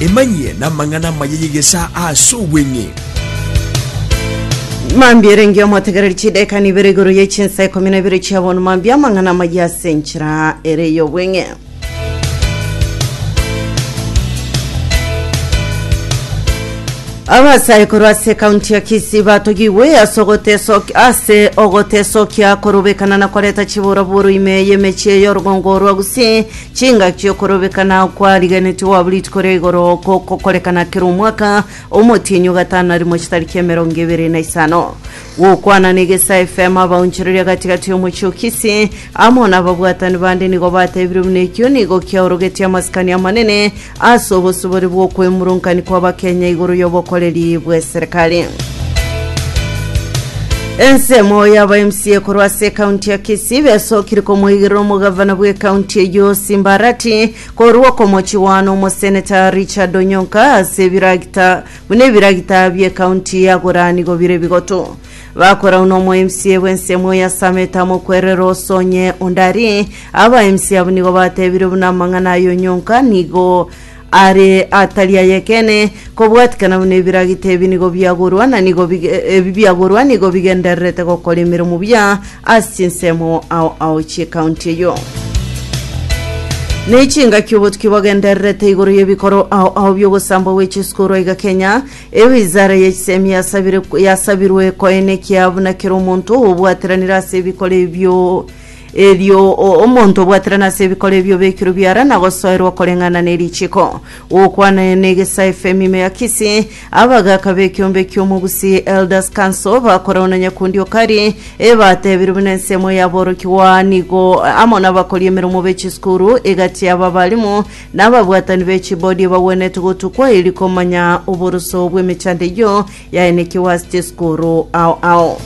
Emanyie namang'ana amaya y'egesaa ase obweng'e. Mambia erenge omotegereri chidekani ibere igoro ye chinsa ikomi na ibere chia bono mambia amang'ana amaya ase enchera ere y'obweng'e. abasae korwa ase kaunti ya kisii batogigwe ase ogoteso- ase ogotesokia korobekana na koreta chiburaburu ime y'emechie y'orugongo rwa gusii Chingaki okorobekana kwarigenetigwe abwo rituko ria igoro gokokorekana kera omwaka, omotienyi ogatana rimo chitari kia emerongo ebere na isano. Gokwana na Egesa FM abaonchoreria gati-gati y'omochie o Kisii amo nababwatani bande nigo batebire buna ekio nigo kiaorogetie amasikani amanene Ase obosibore bw'okwemurunkaini kw'abakenya igoro y'obokoreri bw'eserekari. Ensemo y'aba MCA korwa ase ekaunti ya Kisii besokire komoigerera omogavana bw'ekaunti eyio Simbarati korwa okomochiwana omoseneta Richard Onyonka ase ebiragita buna ebiragita bi'ekaunti agora nigo bire bigoto Bakorau nomoemsie bw'ensemo oyasamete amokwerere osonye onde arie. Abaemisi abwo nigo batebire buna amang'ana ayo nyonka nigo are atari ayekene kobwatikana buna ebiragita ebi nigo biagorwa na nigo bige- ebi biagorwa nigo bigendererete gokora emeremo buya ase chinsemo ao ao chi'ekaunti eyo Nechingaki obotuki bogendererete igoro y'ebikoro ao ao bi'ogosambwa gwe chisukuru aiga Kenya Ewizara ye chisemi yasabire yasabirwe koenekia buna kera omonto obwateranire ase ebikoro ebio erio o- omonto obwaterana ase ebikoro ebio bekirwe biara na gosoerwa koreng'ana ne richiko gokwana ne egesa efemi ime ya kisi abagaka b'ekiombe ki'omogusi elders council bakorao na nyakundi o kari ebatebirwe buna ensemo y'aborokigwa nigo amo nabakoria emeromo be chisukuru egati y'ababalimu Na ababwatani be chibodi bagwenerete gotukwa erio komanya oboroso bw'emechando eyio yaenekigwe ase chisukuru ao ao.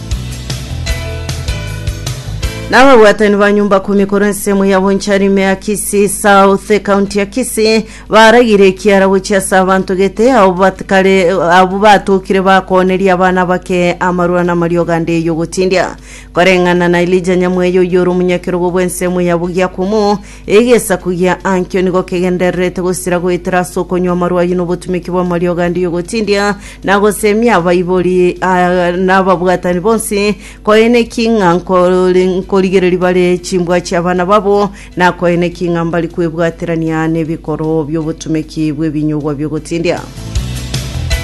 Na ababwatani ba nyumba kumi korwa ensemo ya Boncharime ya Kisii South, ekaunti ya Kisii, baragire ekiara gochia ase abanto gete abo batikare abo batokire bakooneria abana abake amarwano amaria oganda eyio gotindia. Koreng'ana na Elija Nyamweya oyio ore omonyakerogo bw'ensemo ya Bugiakumu, Egesaku gia Ankio nigo kegendererete gosira goetera ase okonywa amarwa ayio na obotumeki bw'amariogo ande y'ogotindia na gosemia abaibori ah, na ababwatani bonsi, koeneki ng'a nkori- nkorigereria bare chimbwa chi'abana babo, na koeneki ng'a mbari kwebwaterania n'ebikoro bi'obotumeki bw'ebinyugwa bi'ogotindia.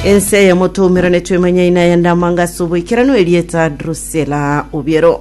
Ense eye motoumera netwemanyaine ayande amanga ase oboikeranu erieta Drusela Obiero.